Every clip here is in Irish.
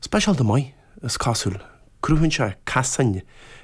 Speisialta maith, is cosúil. Cruthaíonn sé casáin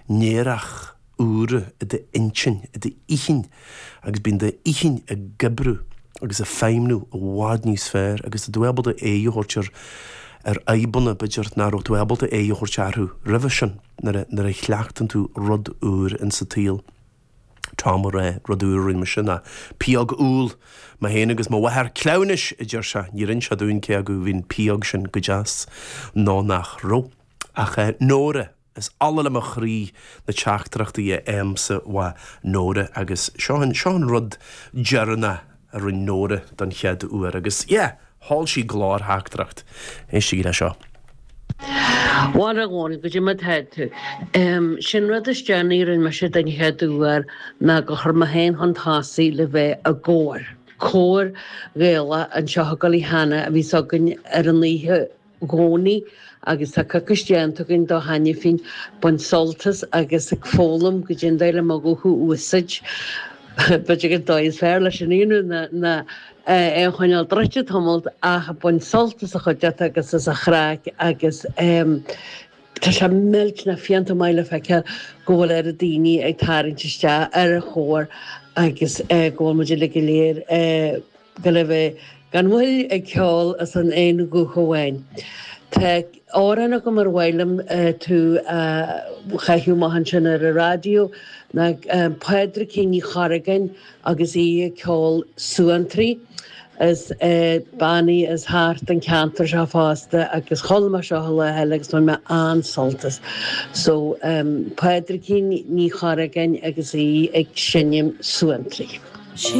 néarach úra i d'intinn, i d'inchinn, agus bíonn d'inchinn ag oibriú agus ag feidhmniú i bhfad níos fearr agus tá tú ábalta aghaidh a thabhairt ar ar fhadhbanna, b'fhéidir, nach raibh tú ábalta aghaidh a thabhairt arthu roimhe sin nuair a chleachtann tú rud úr in sa tsaol. Tom Mhuire, rud úr a rinne mise ná pióg úll. Mé féin agus mo mháthair chleamhnais, a deir sé. Níor ins sé dúinn cé acu bhí an pióg sin go deas nó nach raibh. Ach eh, Nóra, is ola le mo chroí na teachtaireachtaí a fhaighimse uaidh Nóra agus seo an, seo an rud deireanach a rinn Nóra don chéad uair agus yeah! sheol sí glórtheachtaireacht. Éistigí le seo. Bhal a Dhónaill, goidé mar atá tú. Sé'n rud is déanaí a rinn mise don chéad uair ná gur chuir mé féin chun tosaigh le bheith i gcór, cór Gaelach anseo i gCoilleach Eanach a bhíos againn ar an oíche, gcónaí agus tá coicís déanta againn de cheana féin baint sult as agus ag foghlaim goidé an dóigh le mo ghuth a úsáid b'fhéidir ag an dóigh is fearr leis an aonrú ná ná é a choinneáil druidte tamalt ach baint sult as an chuideachta agus as an chraic agus tá sé millteanach fiánta maith le feiceáil go bhfuil oiread daoine ag tarraingt isteach ar an chór agus go bhfuil muid uilig go léir ag. gabháil a bheith gan mhoill ag ceol as an aon ghuth amháin. Tá amhrán agam ar mhaith liom tú a chaitheamh amach ansin ar an raidió ná Pádraigín Ní Chorragáin agus í ag ceol Suantraí. Is bean í as thart an ceantar seo fosta agus chuala mé seo an lá eile agus bhain mé an-sult as. So, Pádraigín Ní Chorragáin agus í ag seinm Suantraí.